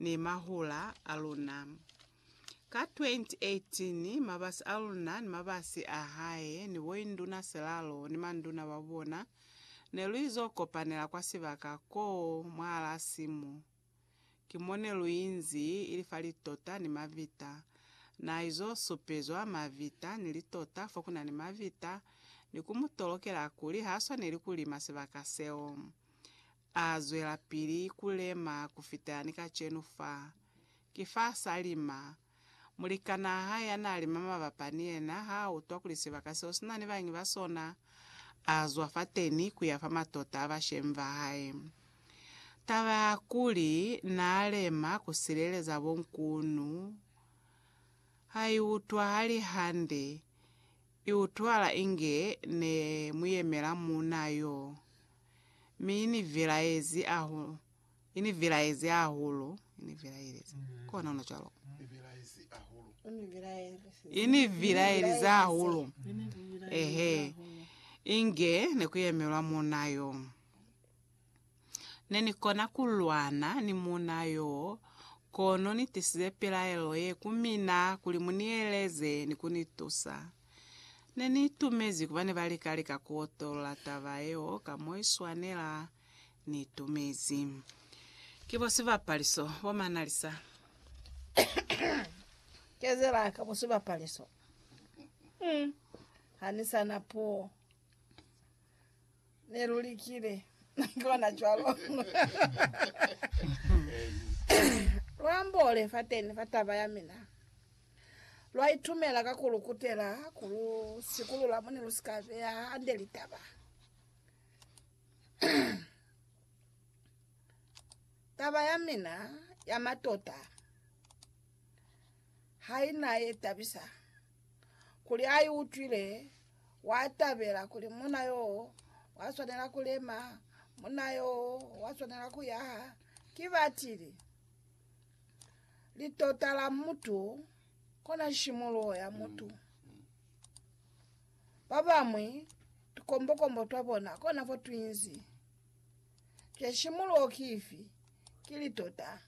ni mahula a luna. Ka 2018, mabasi a luna ni mabasi a hae ni boinduna silalo ni manduna ba bona ne lu izo kopanela kwa sibaka ko mwahalaa simu. Ki mo ne lu inzi, ili fa litota ni mavita. Na izo supezwa mavita ni litota fo ku na ni mavita ni ku mu tolokela kuli ha swaneli ku lima sibaka seo. A zwelapili ku lema ku fita ni kacenu fa. Ki fa sa lima. Mulikanaa hae ya naa lima mabapa ni yena ha a utwa kuli sibaka seo si na ni bañi ba sona, a zwa fateni ku ya fa matota a bashemi ba hae. Taba ya kuli naa lema ku sileleza bonkunu ha i utwahali hande. I utwahala inge ne mu yemela muunaa yo. mi inivelaezi ahulu, inivelaezi hahulu, inivelaelezi, kona ona cwalo, inivelaelezi hahulu, ehe, inge nekuyemelwa muna yo. Nenikona kulwana ni muna yo, kono nitisize pilaelo ye ku mina kuli munieleze ni kunitusa. Ne ni itumezi kuba ne ba lika-lika ku otolola taba yeo ka mo i swanela. Ni itumezi ki bo sibapaliso bo manalisa. Kezela ka bo sibapaliso. Ha ni sa na puo. Ne lu likile na kona cwalo. Lu ambole fateni fa taba ya mina. Lwa itumela ka ku lu kutela ku lu sikulula mo ne lu si ka beya hande litaba. Taba ya mina ya matota ha i na ye tabisa. kuli a i utwile, wa tabela kuli muna yo wa swanela ku lema, muna yo wa swanela ku yaha. Ki batili litota la mutu kona shimuluho ya mutu. Ba bamwi tukombokombo twa bona kona fo twinzi. Je shimuluho ki ifi? Ki litota.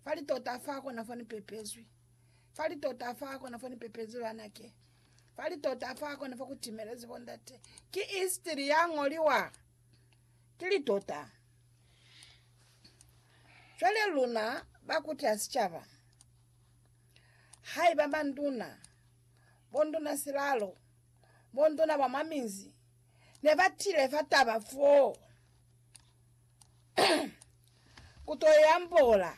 Fali tota fa kona fo ni pepezwi. Fali tota fa kona fo ni pepezwi banake. Fali tota fa kona fo ku timelezi bo ndate. Ki istiri ya ngoliwa. Ki li tota. Jwale luna ba kuti ya sicaba. Haiba banduna, bonduna silalo, bonduna ba mwa minzi, ne ba tile fa taba foo. ku to i ambola.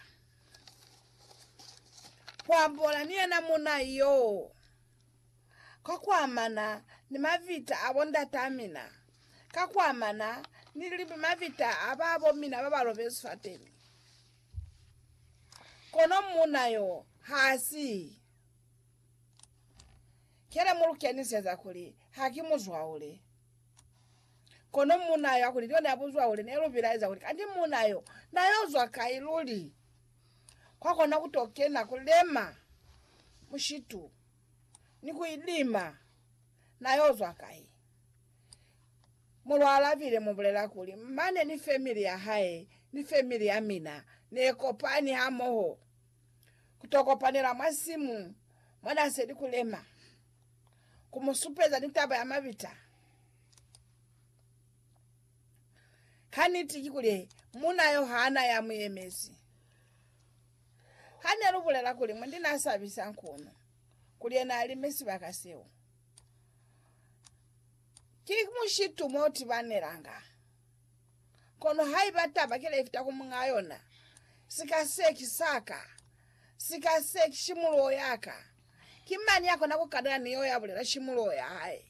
Ku ambola ni yena munna yoo ka ku amana ni mavita a bo ndataa mina, ka ku amana ni mavita a babo mina ba ba lobezi fateni. Kono munna yoo ha si kele mu lu keniseza kuli ha ki muzwaule. Kono muuna yo, hakuli John abuzwa kuli, ne lu bilaeza kuli, Kanti muuna yo na yo zwa kai luli? Kwa kona ku to kena ku lema mushitu ni ku ilima, na yo zwa kai? Mulwa alabile, mu bulela kuli, Mane ni family ya hae ni family ya mina ne kopani hamoho ku to kopanela mwa simu mwa na seli ku lema. ku mu supeza ni taba ya mabita. Kaniti ki kuli, muuna yo ha na ya mu yemezi. Ha ne lu bulela kuli, Mundi na sabisa nkunu kuli yena a lime sibaka seo, ki mushitu mo tibanelanga. Kono haiba taba kile ifita ku muñaa yona, sika se ki sa ka, sika se ki shimuloho ya ka, ki mañi ya kona ku kanana ni yo ya bulela shimuloho ya hae?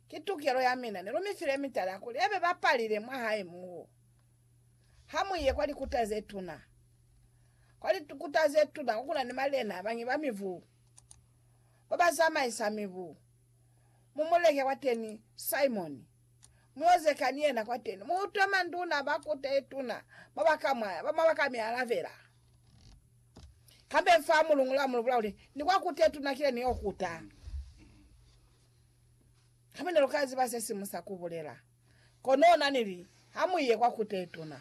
Ki tukelo ya mina. Ne lu mi file mitala kuli ya be bapalile mwa hae moo. Ha mu ye kwa likuta ze tuna, kwa likuta ze tuna ko ku na ni malena a bañwi ba mibu, ba ba zamaisa mibu. mu muleke kwateni Simoni muozeka ni yena kwateni, muutwe manduna ba kuta yetuna ba ba kamwaya ba mwa baka mialabela kambeni fa mulungula, mulubula kuli, Ni kwa kuta yetuna kile niyo kuta, hami neluka ziba sesimusa kubulela. Kono nanili, Hamuiye kwa kuta yetuna.